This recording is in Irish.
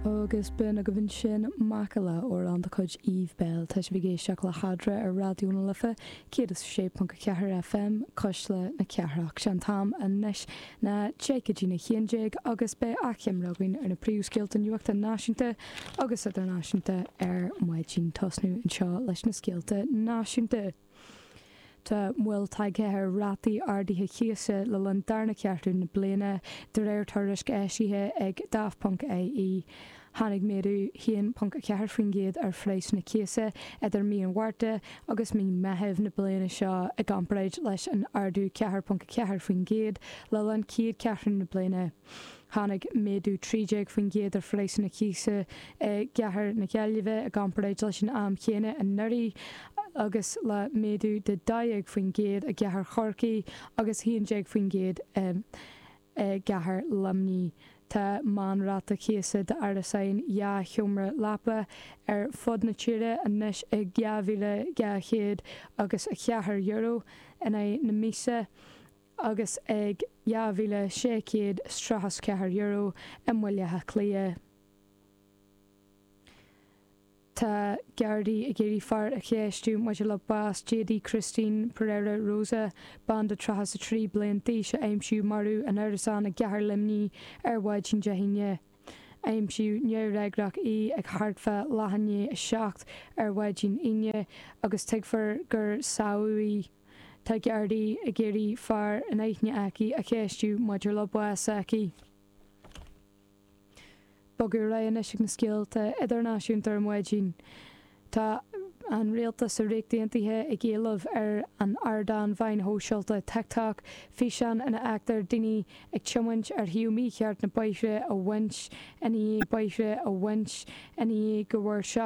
Agus beidh ina dhiaidh sin Macalla amhrán de chuid Eve Belle. Tá sibh ag éisteacht le hEadra ar Raidió na Life 106.4 FM, Cuisle na Cathrach. Sé an t-am anois ná déag go dtí na haon déag agus beidh achoimre againn ar na príomhscéalta nuachta náisiúnta agus idirnáisiúnta ar maidin. Tosnú anseo leis na scéalta náisiúnta. Tá moill tagtha ar rátaí ardaithe cíosa le linn darna ceathrú na bliana, de réir tuairisc eisithe ag Daft.ie. Tháinig méadú 1.4% ar phraghsanna cíosa idir mí an Mhárta agus mí Meitheamh na bliana seo i gcomparáid leis an ardú 4.4% le linn chéad cheathrú na bliana. Tháinig méadú 13% ar phraghsanna cíosa i gCathair na Gaillimhe i gcomparáid leis an am céanna anuraidh agus le méadú de 12% i gCathair Chorcaí agus 11% i gCathair Luimní. Tá meánráta cíosa d'árasán dhá sheomra leapa ar fud na tíre anois ag €2,200 agus €4 in aghaidh na míosa. agus ag €2,634 i mBaile Átha Cliath. Tá Gardaí ag iarraidh fear a cheistiú maidir le bás Jady Cristine Pereira Rosa, bean de 33 bliain d'aois a aimsíodh marbh in árasán i gcathair Luimní ar mhaidin Dé hAoine. Aimsíodh neamhfhreagrach í ag thart fá leath i ndiaidh a seacht ar mhaidin Aoine agus tuigtear gur sádh í. Tá Gardaí ag iarraidh fear in aithne aici a cheistiú maidir le bás s'aici. Bogadh ar aghaidh anois ag na scéalta idirnáisiúnta ar maidin. Tá an Rialtas sa Ríocht Aontaithe ag éileamh ar an ardán mheáin shóisialta TikTok físeán ina bhfeictear daoine ag tiomáint ar thaobh mícheart na bóithre a bhaint i ndiaidh go bhfuair